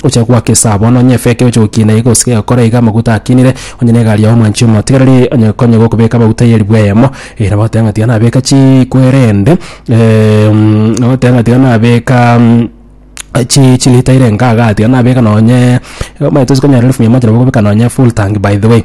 Oche gwaka esabo, onye onye efeke ochokie na iga osike egakora iga amaguta akinire, onye na egari yao mwanchie omotigereri, onye ekonye gokobeka amaguta ye ribwe eyemo, eh nabo oteba ng'a tiga nabeka chikwerende nabo oteba ng'a tiga nabeka chi chilita ere engaga, tiga nabeka nonye omanyete tosikonyara elfu mia moja nabo okobeka nonye efull tank by the way.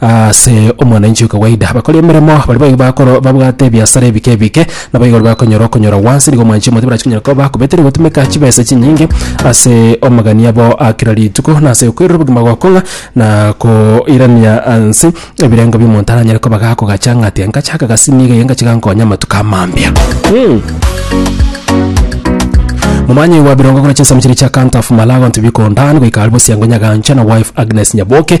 Ase omwananchi okowaida, bakori emeremo baria baigo bakoro babwate ebiasara ebike ebike, nabo igoro bakonyora okonyora gwansi. Nigo omwanchi omote barache konyora koba bakobete na gotumeka chibesa chinyinge ase amagani abo a kera rituko, na ase okoirora obogima gokong'a na koirania nse ebirengo bi'omonto aranyare koba gakogacha ng'a tiga ngacha aka gasi niga iga ngache gankonye amatuko amambia. Momanye gwa birongo korwa chinsemo chiria chia Canter of Malagon to Biko Ndan goika Alvos Yango Nyagancha na wife Agnes Nyaboke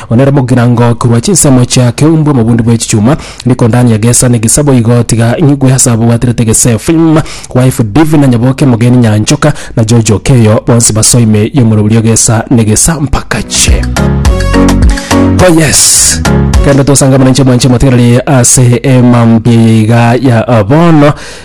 Abwo nere mogirango korwa chinsemo chia keumbwa mobundi bwe chichuma, rikondani egesa na egesabo igo, tiga nyigwe ase abwo bwaterete Gesefim, wife Divi na nyaboke mogeni Nyanchoka, na George Okeyo, bonsi basoe ime y'omorobio y'egesa na egesampakache. Oh yes. Kende tosangamana inche mwanche motigareri ase emambia yeiga ya abono.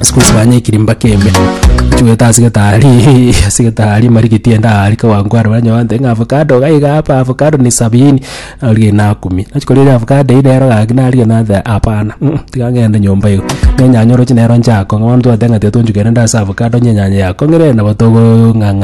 Siku hizi fanya ekirimba kebe chigwete ase getari ase getari marigiti ende aa rika gwangware oranywa gwantere ng'a avocado iga iga hapa avocado ni sabini narigia inaa kumi nachi koria ere avocado eye nero gaki narigia nateba hapana mm tiga ng'ende nyomba iga na enyanya oroche nero nchakong'a bono twateba ng'a tiga tonchukere nde ase avocado onye enyanya yakong'ire nabo togong'ang'a.